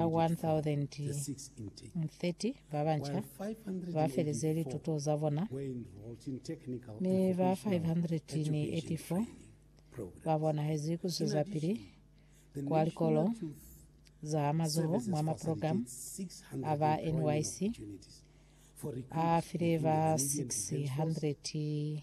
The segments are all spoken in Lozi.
Ba 1,030 babanca bafeleze lituto zabona, mi ba 584 babonahezi kuzwezapili kwa likolo za mazoho mwa maprogramu aba NYC afile ba 600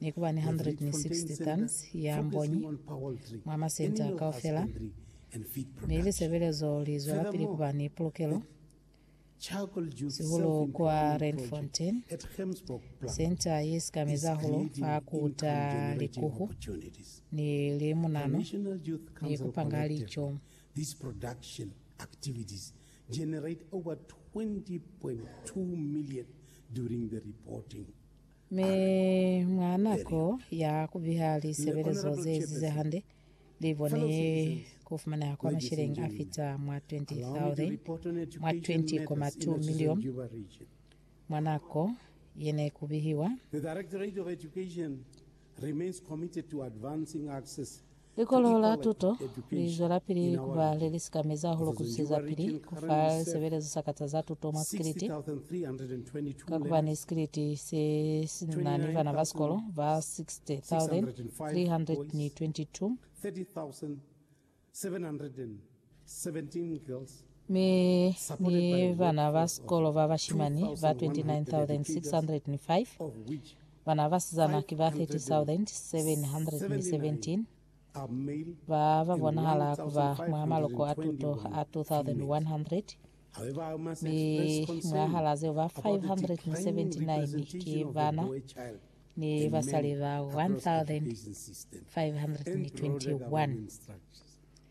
Ni kuba ni 160 tons ya mbonyi mwa masenta kaufela, mi lisebelezo li zwelapili kuba ni pulukelo, sihulu kwa Randfontein, senta ye sikameza hahulu fa ku ta likuhu ni limunanu ni ku panga lico. These production activities generate over 20.2 million during the reporting Mi mwa nako ya kubiha lisebelezo zeezize hande, libone kufumaneha kwa masheleñi afita mwa 20,000 mwa 20.2 milioni mwa nako yene kubihiwa. The Directorate of Education remains committed to advancing access Likolo la tuto li zwelapili ku ba le li sikamezi hahulu ku zwezapili ku fa lisebelezo sa kata za tuto mwa sikiliti, ka ku ba ni sikiliti se si na ni bana ba sikolo ba 60,322. mi ni bana ba sikolo ba bashimani ba 29,605, bana ba basizana ki ba 30,717, ba ba bonahala ku ba mwa maloko a tuto a 2,100, mi mwahal'a zeo ba 579 ki bana ni basali ba 1,521.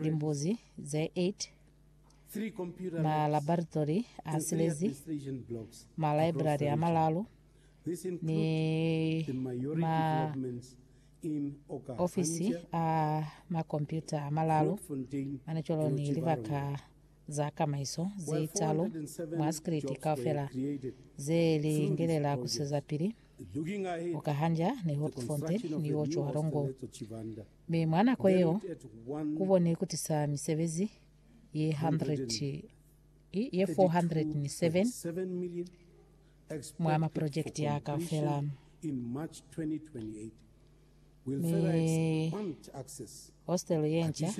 limbuzi ze 8, malabaratory a silezi, malaibrari a malalu, ni maofisi a makompyuta a malalu manicolo ni libaka za kamaiso ze talu mwa sikiliti kaufela ze lingelela kusezapili Okahanja ni Hoogfontein ni Otjiwarongo. Mi mwa nako yeo, ku boni ikuti sa misebezi ye 100, ye 407 mwa maprojekiti ya kaufela. Mi hostelu ye nca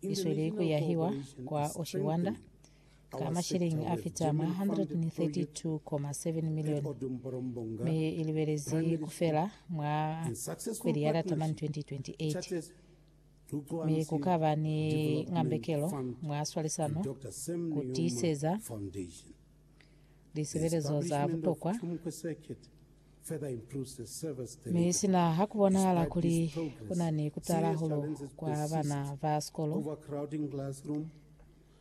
i sweli ku yahiwa kwa Oshiwanda ka masheleñi a fita mwa 132.7 milioni, mi i libelezi ku fela mwa kweli ya Lataman 2028. Mi ku ka ba ni ngambekelo mwa swalisano ku tiiseza lisebelezo za butokwa, mi sina ha ku bonahala kuli ku na ni ku tala hahulu kwa bana ba sikolo.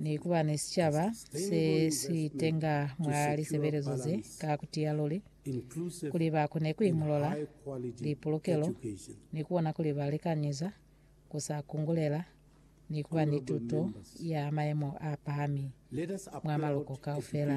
Ni ku ba ni sicaba se si tenga mwa lisebelezo ze, ka ku tiya luli, kuli ba kone ku imulola lipulukelo ni ku bona kuli ba likanyeza ku sa kungulela ni ku ba ni tuto ya mayemo a pahami mwa maloko kaufela.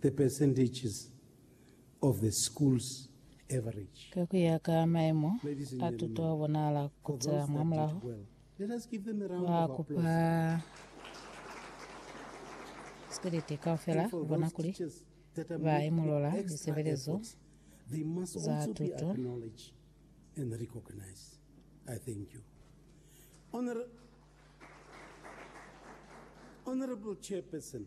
The percentages of the school's average. Ka ku ya ka maemo a tuto a bonahala ku tela mwamulaho, ba kupa sikoliti kaufela bona kuli ba imolola lisebelezo za tuto. Honourable Chairperson,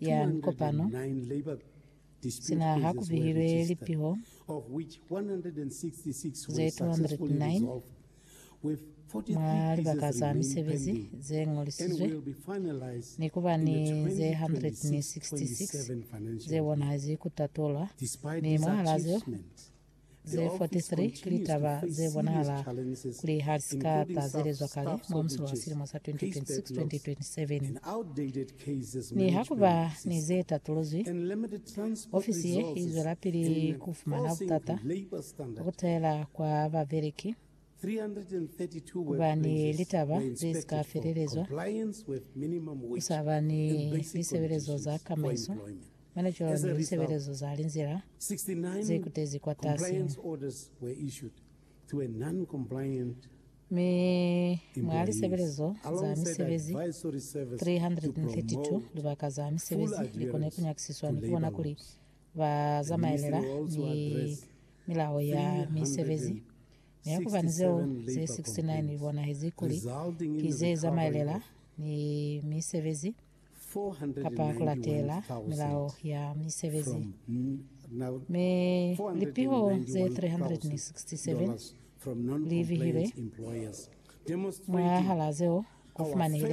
ya mikopano, sina ha ku bihilwe lipiho ze 209 mwa libaka za misebezi ze ñolisizwe, ni ku ba ni ze 166 ze bonahezi ku tatulwa, mi mwahal'a zeo, Ze 43 ki litaba ze bonahala kuli ha si ka tazelezwa kale mwa musulo wa silimo sa 2026-2027. Nihakuba ni ze tatuluzwi, ofisi ye i zwelapili ku fumana butata bwa ku tahela kwa babeleki. Kuba ni litaba ze si ka felelezwa, ku sa ba ni lisebelezo za kamaiso, mane cwalo ni lisebelezo za linzila ze kutezi kwatasi. Mi mwa lisebelezo za misebezi 332, libaka za misebezi li kone ku nyakisiswa ni ku bona kuli ba zamaelela ni Milao ya Misebezi, mi ya kubani zeo ze 69 li bonahezi kuli ki ze zamaelela ni misebezi kapa ku latela Milao ya Misebezi. Mi lipiho ze 367 li bihilwe mwahal'a zeo ku fumanehile